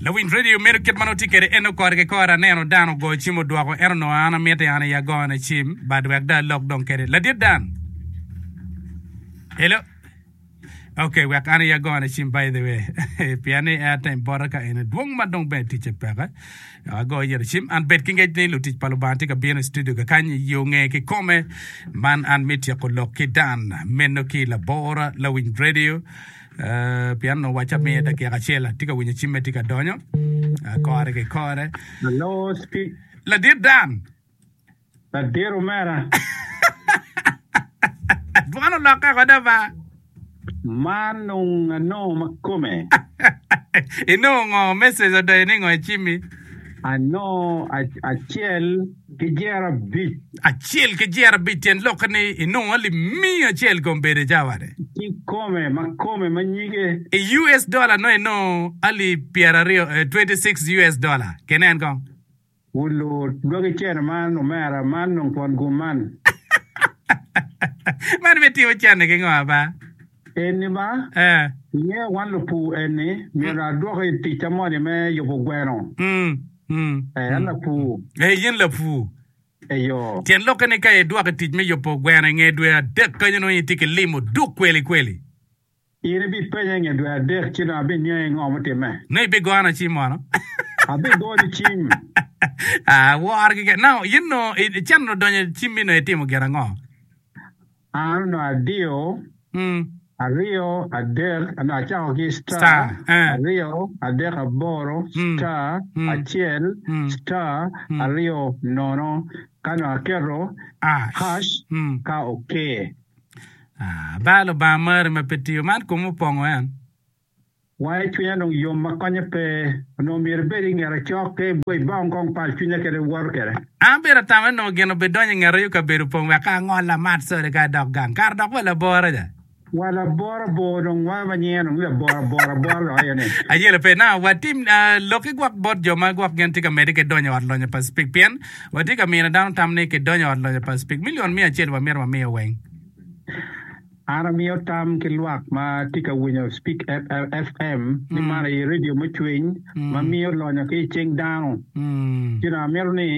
Lawiny radio meno kit ma nongo tye kede en nongo kore ki kore aneno dan ogoyo cim odwoko ento nongo an amite an aye agoyo ne cim but wek dong alok dong kede ladit dan hello ok wek an aye agoyo ne cim by the way pien ni airtime bote ka ene dwong ma dong bene ticce peke agoyo yere cim an bed ki ngec ni lutic pa lubanga tye ka bino i studio kakany i yo nge ki kome man an me tyeko lok ki dan meno ki labora lawiny radio Pien onongo wacca miye dakika acel, atye ka winyo cimme tye ka donyo kore ki kore. Hello, Steve. Ladit Dan. Ladit omera. Dwan olokke kode ba. Man nung anongo makome. Inongo ngo message odoyo ni ngo i cimi? Anongo acel ki Jerabic. Acel ki Jerabic tyen lokke ni i nongo alip miya acel kom bedo i cawa wade. Ki kome ma kome ma nyige. I US dollar no i nongo alip pyera aryo, 26 US dollar. Ke nen kong. Wu lu dwagi cene man omera, man nongo twon gum man. Man me timo cene ki ngo aba? Eni ba, Eh. inge wan lupur eni myero adwoki ticca moni me yubo gweno. Mm. Ee, an lapur. Ee, in lapur. Eyo. Tyen lokke ni ka idwoko i tic me yubo gweno i nge dwe adek kany onongo itye ki lim oduk kweli kweli. In ibipenya i nge dwe adek ci dong abiniangi ngo mutimme. Nongo ibigona cim mono? Abigoni cim. Aa, wor keken. Now, in onongo, i, can onongo donyo i cimmi onongo itimo gin ango? Aa nongo adiyo aryo adek nongo acako ki star aryo adek aboro star acel star aryo nono ka nongo aketo hash ka oke. Aa bal Lubanga mari ma pe tiyo man kome opongo en. Wang i cwinya dong yom ma konye pe, onongo myero ibed i ngeta cok ka ibwo i bong kong pal cwinya kede iwoto kede. An abedo atamane nongo gin obidonyo i ngeta yo kabedo pong wek ka angol amat sode ka adok gang, kara dok wa labora ja. Wa labora bor dong wa ma nyinge dong labora bor abora dok aye ni. Ayele pe na, watim lok igwok bot jo ma gwok gen tye ka mede ki donyo i ot lonyo pa cpik pien wa tye ka mino dano tam ni ki donyo i ot lonyo pa cpik million miya acel wa mito wa miyo weng. An amiyo tam ki lwak ma tye ka winyo Speak FM ni man aye redio me cwiny ma miyo lonyo ki i cing dano. Ci dong amito ni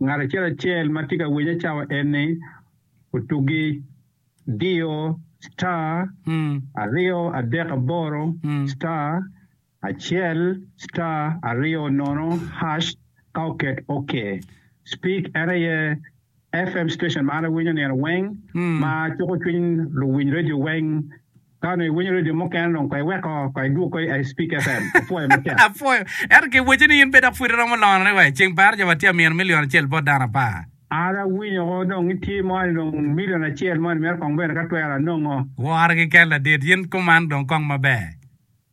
ngat acel acel ma tye ka winye cawa eni otuggi diyo star aryo adek aboro star acel star aryo nono hash ka oket ok. Speak en aye FM station ma an awinyo nino weng ma cuko cwiny luwiny radio weng. Ka onongo iwinyo radio mukene dong ko iweko ko idwog ko i Speak FM. Apwoyo matek. Apwoyo. Ento ki wacci ni in pe dok pwod iromo lorone wai. Ceng par jo watye amino million acel bot dano apar. An awinyo ko dong itye mo ni dong million acel mo ni mito kong bene ka twero anongo. Woro ki kel ladit. Yin kuman dong kong maber.